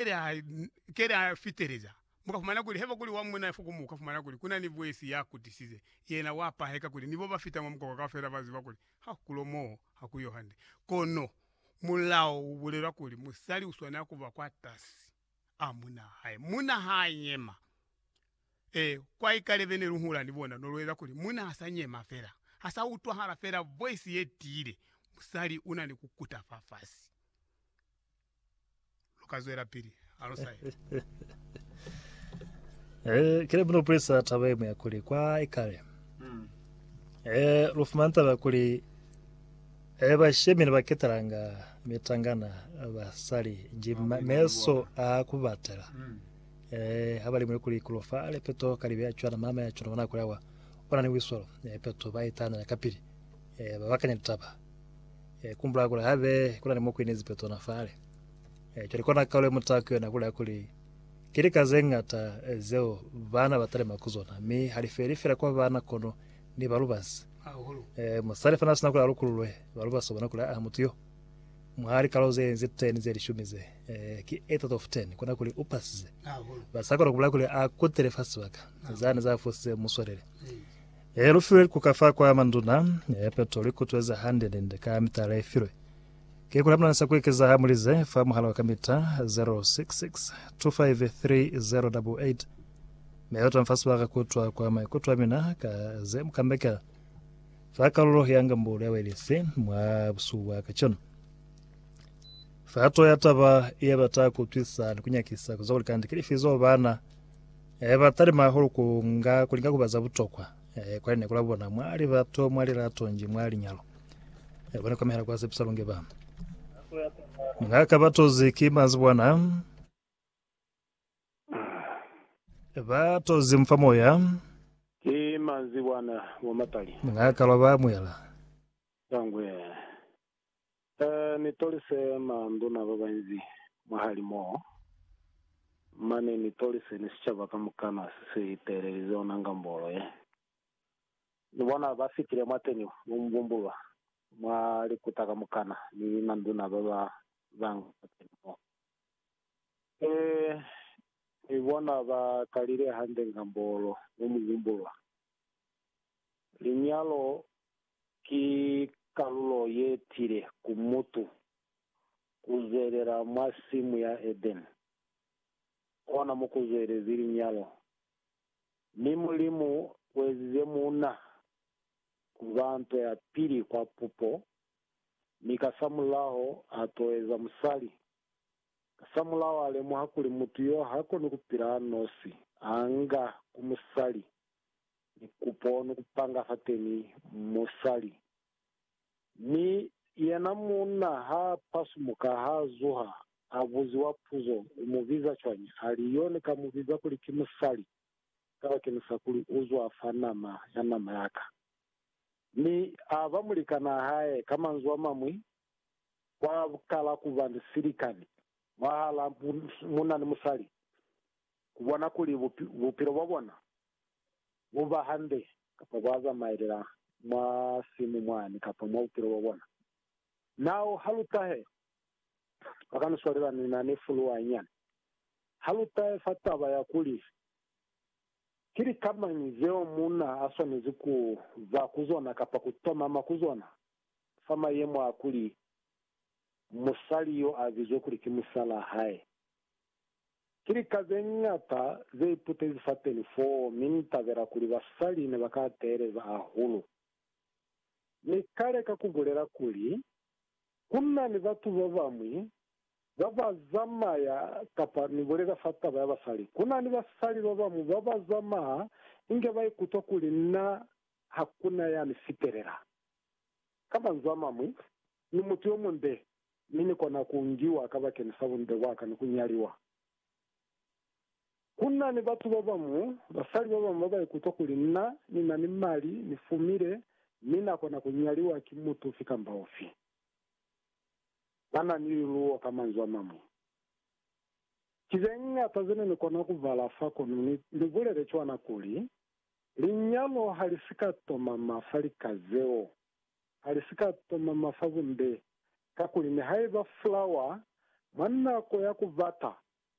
Pele ha kele a fiteleza, mu ka fumana kuli haiba kuli wa muna ya fuku mu ka fumana kuli ku na ni vwesi ya kutisize, yena wa paheka kuli ni bo ba fita mwa mukoko kaufela ba ziba kuli ha ku kulo moo ha ku yo hande. Kono mulao u bulela kuli musali u swanela ku ba kwatasi a munaa hae. Muna ha nyema, ee, kwa ikalebe ne lu hula ni bona no lu eza kuli muna ha sa nyema fela, ha sa utwahala fela vwesi ye tiile, musali u na ni ku kuta fafasi. lu ka zwelapili ha lu sa ye. Eh, kile mno pulisa taba imwe ya kuli kwa ikale hmm. eh, lu fumana taba kuli eh, bashemi ne ba ketelanga mitangana basali jima meso a ku batela hmm. eh, ha ba limwe kuli kulofa le peto ka libe ya cwana mama ya cwana bona kulawa ona ni wisolo eh, peto ba itanela kapili eh, ba bakanya litaba E kumbula kuli habe kuna ni mukwini zipe tsona fale. E cwale kona kaule muta ku yona kula kuli ki lika ze ngata zeo bana ba talema ku zona, mi ha li feli fela kwa bana kono ni ba lubasi. E musali fana sina kuli a lukululwe ba lubasi bona kuli aa mutu yo mwa likalo ze nzi 10 ze lishumi ze, e ki 8 out of 10 kona kuli u pasize. Ba sa kona kubula kuli a kutele fa sibaka zani za fusize muswalele. He lu filwe likuka fa kwa manduna, he peto lu ikutweza hande ninde ka mita le filwe. Ki kuli hamuna ni sa ku ekeza ha mu lize fa muhala wa kamita 0662530088 mi lu tamfa sibaka ku utwa kwa maikuto a mina ka ze mu kambekela fa kalulo ya ngambulo ya Welifi mwa busuku bwa kacenu. Fa to ya taba ye bata ku utwisa ni ku nyakisa ku za kuli kandi ki lifi zo bana E, ba talima hahulu ku nga, ku linga ku ba za butokwa, e, kwa lineku la bona, mwa libato, mwa lilato, nji mwa linyalo. E, bona kwamehela kwa sepisa lunge ba. Ni nga ka ba tozi ki mazibwana, ba tozi mfa moya, Ki manzibwana mwa mapali. ni nga ka lwa ba amuhela. Tangwe. Ba ni tolise maanduna ba banzi mwahalimuo, mane ni tolise ni sicaba kamukana se si teelelize ona ngambolo ye. Ni bona ba fitile mwateni mwa mubumbulwa, mwa likuta kamukana, ni manduna ba ba banga mwateni mo. Ee, ni bona ba kalile hande ngambolo mwa mubumbulwa, Linyalo ki kalulo ye tile ku mutu ku zwelela mwa simu ya Edeni, kona mo ku zwelezi linyalo. Mi Mulimu uezize muuna ku ba nto ya pili kwa pupo, mi kasamulaho a toeza musali. Kasamulaho a lemuha kuli mutu yo ha koni ku pila a nosi, a nga ku musali ni kupo ni kupanga fateni musali. Mi yena munna ha pasumuka ha zuha a buziwa puzo u mu biza cwañi, ali yo ni ka mu biza kuli ki musali kabakeñisa kuli u zwa fa nama ya nama ya ka. Mi a ba mulikanaa hae, ka manzwi a mañwi, kwa kala kuba ni silikani mwahala munna ni musali, ku bona kuli bupilo bwa bona buba hande kapa bwa zamaelela mwa simu mwani kapa mwa bupilo bwa bona. Nao ha lu tahe, ba ka ni swalela ni na ni fuluwa nyana. Ha lu tahe fa taba ya kuli, Ki lika mañi zeo muuna a swanezi ku za ku zona kapa ku tomama ku zona fa mayemo a kuli musali yo a bizwe kuli ki musalaa hae? Ki lika ze ñata ze iputezi fateni foo, mi Ni tabela kuli basali ne ba ka teeleza hahulu. Ni ka leka ku bulela kuli, Ku na ni batu ba bañwi ba ba zamaya, kapa ni bulela fa taba ya basali, ku na ni basali ba bañwi ba ba zamaya inge ba ikutwa kuli na ha ku na ya ni fitelela. Ka manzwi a mañwi, Ni mutu yo munde, mi Ni kona ku ngiwa kabakeni sa bunde bwa ka ni ku nyaliwa. Ku na ni batu ba bañwi, basali ba bañwi ba ba ikutwa kuli na, ni na ni mali, ni fumile, mi na kona ku nyaliwa ki mutu ufi kamba ufi. Ba na ni liluwo, ka manzwi a mañwi. Ki ze ñata ze ne ni kona ku bala fa, kono ni, ni bulele cwana kuli, linyalo ha li si ka tomama fa lika zeo. ha li si ka toma masabunde, kakuli nihaiba fulawa mwa nako ya ku bata